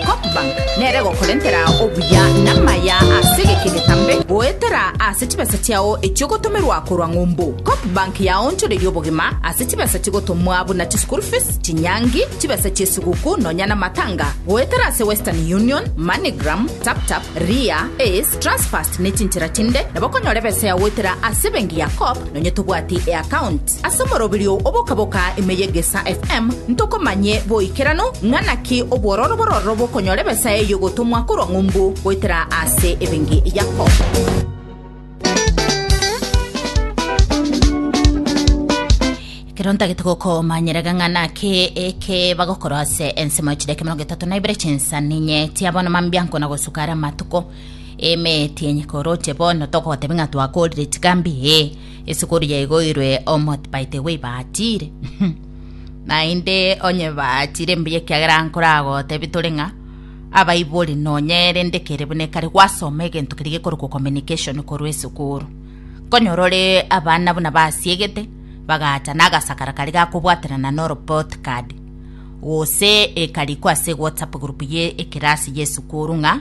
Copbank nere gokorentera obuya namaya ase egeke getambe goetera ase chibesa chiao echiogotomerwa korwa ng'umbu. Copbank yaonchoreria obogima ase chibesa chigotomwa buna chischool fees, chinyangi, chibesa chiesiguku nonya namatanga goetera ase Western Union, Moneygram, Taptap, Ria, Ace, Transfast nechinchera chinde nabo okonyora ebesa yao goetera ase ebenki ya Coop nonya tobwati eaccount. Ase omoroberio oboka-boka ime y'Egesaa FM ntokomanye boikeranu ng'a naki obwororo bororo bokonyora ebesa eye y'ogotomwa korwa ng'umbu goetera ase ebenge yako. Ekero ntagete gokomanyera ng'a naki eke bagokora ase ensemo ya chidaki mirongo etato na ibere chinsa ninye tiabono mambianko na gosuka ara amatuko eme tienye koroche bono togotebi ng'a twakorire chikambi ee Esukuru yaigoirwe omote by the way baachire. Naende onye baachire mbuya ekiagera nkoragotebie tore ng'a abaibori nonya ere ndekere buna ekare gwasoma egento keria gekorokwa communication korwa esukuru. Nkonyora ore abana buna basiegete bagacha na agasakara karia gakobwaterana na report card gose ekarikwa ase whatsapp group ye ekerasi y'esukuru ng'a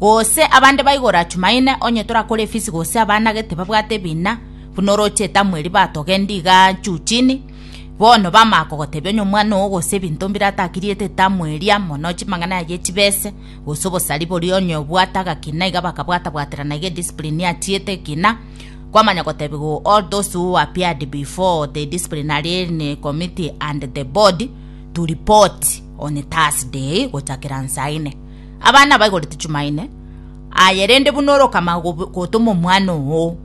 Gose abande baigora Chumaine, onye torakore efisi gose abana gete babwate ebina, buna oroche etamweri batogendi iga chuchini, bono bamanya kogotebia onye omwana oo gose ebinto mbire atakiriete etamweri amo no chimang'ana yaye echibese gose obosari boria onye obwate agakina iga bakabwata-bwaterana iga ediscipline achiete ekina, kwamanya gotebia go all those who appeared before the disciplinarian committee and the board to report on Thursday gochakera nsa ine. Abana baigore Tuchumaine aye rende buna orokama gotoma omwana oo.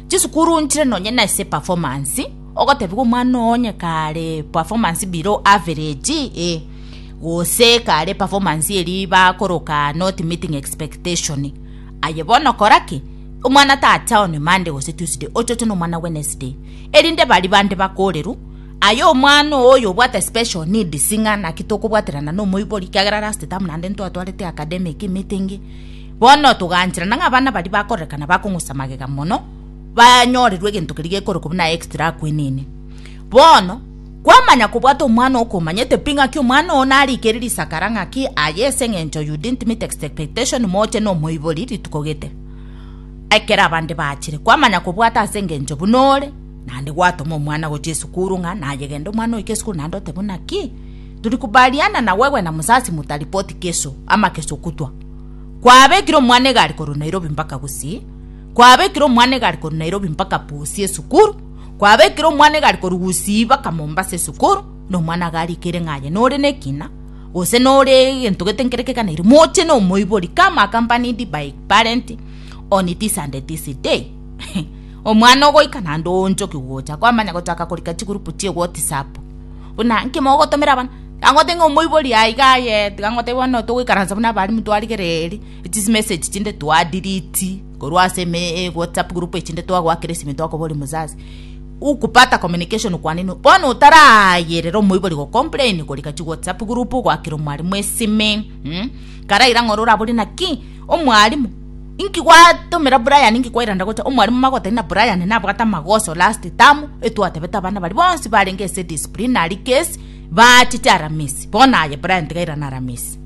Chisukuru nchire nonye na ase performance ogotebigwa omwana oo onye kare performance below average ee gose kare performance eri bakoroka not meeting expectation aye bono kora ki omwana tacha on Monday gose Tuesday ochoche nomwana Wednesday erinde bari bande bakoreru Aye omwana oo oyo obwate special needs ng'a naki tokobwaterana na omoibori ekiagera last term naende ntwatwarete academic meeting bono togaancherana ng'a abana baria bakorekana bakong'usa magega mono banyorerwe egento keria gekorokwa buna extra akwenene. Bono kwamanya kobwata omwana oo komanyete pi ng'aki omwana oo narikeri risakara ng'aki aye ase eng'encho you didn't meet expectation moche na omoibori rituko gete ekero abande baachire kwamanya kobwata ase eng'encho buna ore Naende gwatoma omwana gochia esukuru ng'a nayegende omwana oike esukuru naende ote buna ki? Turikubaliana na wewe na musasi mutaripoti keso ama keso kutwa. Kwabekire omwana egari korwa Nairobi mpaka Gusii. Kwabekire omwana egari korwa Nairobi mpaka Busia esukuru. Kwabekire omwana egari korwa Gusii mpaka Mombasa esukuru. Na omwana iga arikire ng'a aye nore nekina gose nore egento gete nkere keganeirie. Moche na omoibori come accompanied by parent on this and this day. Omwana ogoika naende oonchoke gocha kwamanya gochaka korika chigurupu chie Whatsapp. Buna inki mogotomera abana? Tiga ngote ng'a omoibori aiga aye, tiga ngote bono togoikaransa buna abalimu twarigere eeri, echi chimessage chinde twadiriti korwa ase Whatsapp group echinde twagoakera esimi twakoboria omozazi ukupata communication kwa nini? Bono otarayerera omoibori gocomplain korika chiWhatsApp group goakera omwalimu esimi, mh, karaira ng'a ore oraborie naki? Omwalimu. Inki gwatomera Brian inki kwairanda gocha omwarimu magotebia ng'a Brian nabwate amagoso last term etwatebete abana baria bonsi barenge ase disciplinary case baachiche aramisi bono aye Brian tiga airane aramisi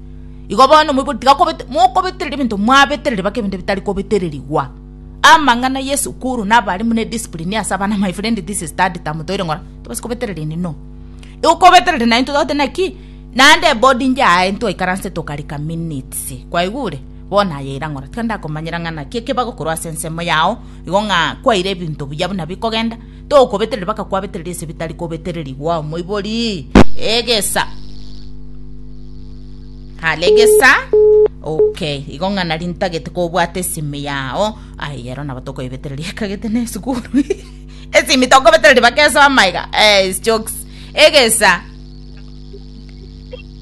igo bono omoibori tiga kobete mokobetereri ebinto mwabetereri baka ebinto bitari kobetererigwa amang'ana ya esukuru na abarimu ne discipline ase abana my friend this is third term toire ng'ora tibasi kobeterereni no igo kobetereri naintwe togotebi naki naende ebodingi yaye intwe twaikaranse tokarika minutes. Gose kwaigure? Bono aya erang'oro, tiga ndakomanyera ng'a naki ekebago korwa ase ensemo yao igo ng'a kwaire ebinto buya buna bikogenda, tokobetereri mpaka kwabetereri ase ebitari kobetererigwa. Omoibori, Egesa! Hare egesa! Okay, igo ng'a nari ntagete kobwata esimi yao. Ai, ero nabo tokoebetereri ekagete na esukuru. esimi tokobetereri mpaka esomaiga. Eh, is jokes. Egesa!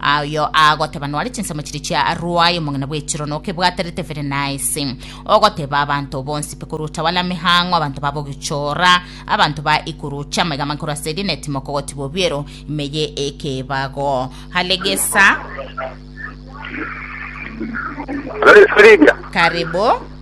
Ayio agoteba nware chinsemo chiria chia Aruai, omong'ina bw'echirono, okebwaterete Verenaisi, ogoteba abanto bonsi pekurucha bana mehang'o, abanto babo gechoora, abanto ba ikurucha amaiga amankoro ase eria netimo okogotibwa obiero ime ye ekebago. Halegesa. Karibu.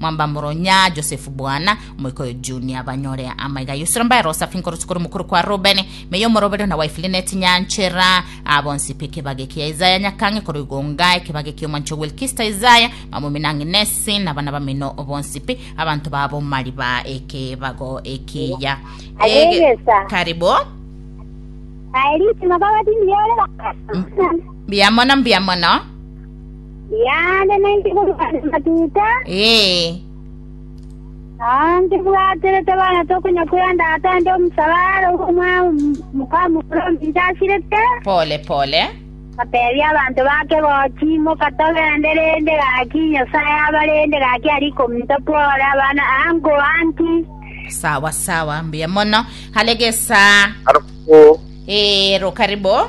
Mwambamoro ng'a Josefu bwana, omoika oyo Junia, banyore amaiga y'usura mbaye Rosafi nkoro sikoro mokoro kwa Rubeni, meyia omoroberio na wife Linet nyanchera, aa bonsi pe kebage kia Isaya nyakang'e koro igo ng'a ekebage ki'omwancho Wilkista Isaya, mamomino ang'e Nesi, nabana bamino bonsi pe abanto ba bomari ba ekebago ekiya. Abegesa. Karibu. Aye ritima baba tindi yore bakasa. Mbuya mono, mbuya mono. Riaare nainche korwa ase amatuta, Ee, na ntibwaterete bana tokonyakwera ndata ande omosalare obo omwa- mokamokuru ominto asirete. pole pole. Ateebia abanto bake, Gochi, imoka togende, rende gaki Nyasae abarende, gaki aria ikominto twore abana ango anti. Sawa sawa, mbuya mono. Hale gesa. Arabwo Ee, rokaribo.